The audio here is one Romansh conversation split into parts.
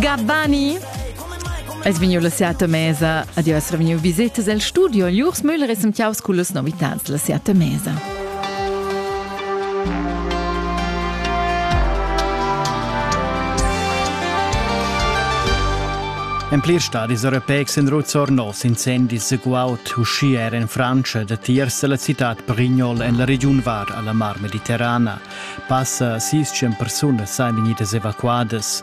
Gabbani! Es vegniu la siata mesa, adieu es revegniu visetas el studio, Lurs Müller es sentiaus cullas novitads la siata mesa. En plir stadis europeics in ruzzor nos incendis guaud uschia er in Francia da tiers la citat Perignol en la regiun var alla Mar Mediterrana. Passa 600 persunas sain vegnidas evacuadas.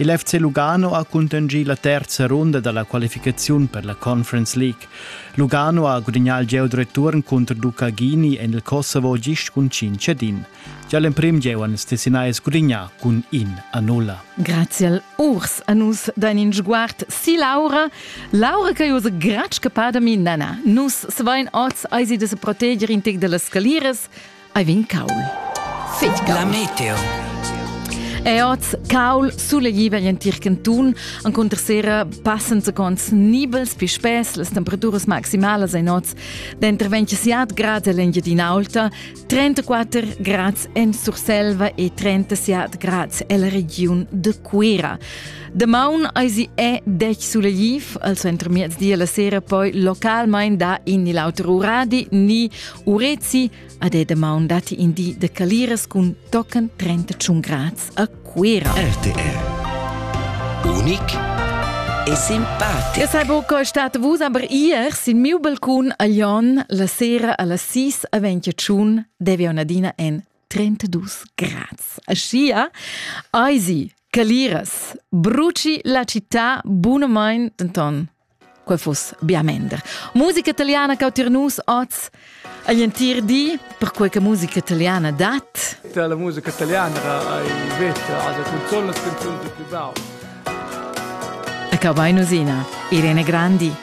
Il FC Lugano ha cuntanschì la terza runda da la qualificaziun per la Conference League. Lugano ha gudagnà il gieu return cunter Ducagini en il Kosovo gist cun 5 cedin. Gia l'emprim gieu han ils Tessinais gudagnà cun in a nulla. Grazie al urs a nus dain in sguard si Laura. Laura che usa gratsch che padami nana. Nus svein oz eisi de se proteger in tic de las scaliras. Ei vegn caul. Fetg La meteo. E oz caul sulegliva en tir cantun encunter sera passen secons nibels pi spess las temperaturas maximalas ein oz denter 27 grad en l'Engiadinaulta, 34 grads en Surselva e 37 grads en la regiun de Cuera. De maun eisi è dec sulegliv, al centro miezdia la sera poi localmein da in ni l'auter uradi ni Urezi ad è damaun datti in di de caliras cun tochen 31 grads a Cuira. RTR Unik e simpatico. Io sai buca stat vus, aber ier sin miu balcun a Lyon la sera alla 6 a 21 devi Nadina en 32 grads. Aschia Eisi, Caliras, bruci la città bunamain denton Quei fuss bia mender. Musica italiana che autir nus oz agl entir di, perquei che musica italiana dat. La musica italiana hai veta a canzonas canzoni più basse. E che vai nusina, Irene Grandi.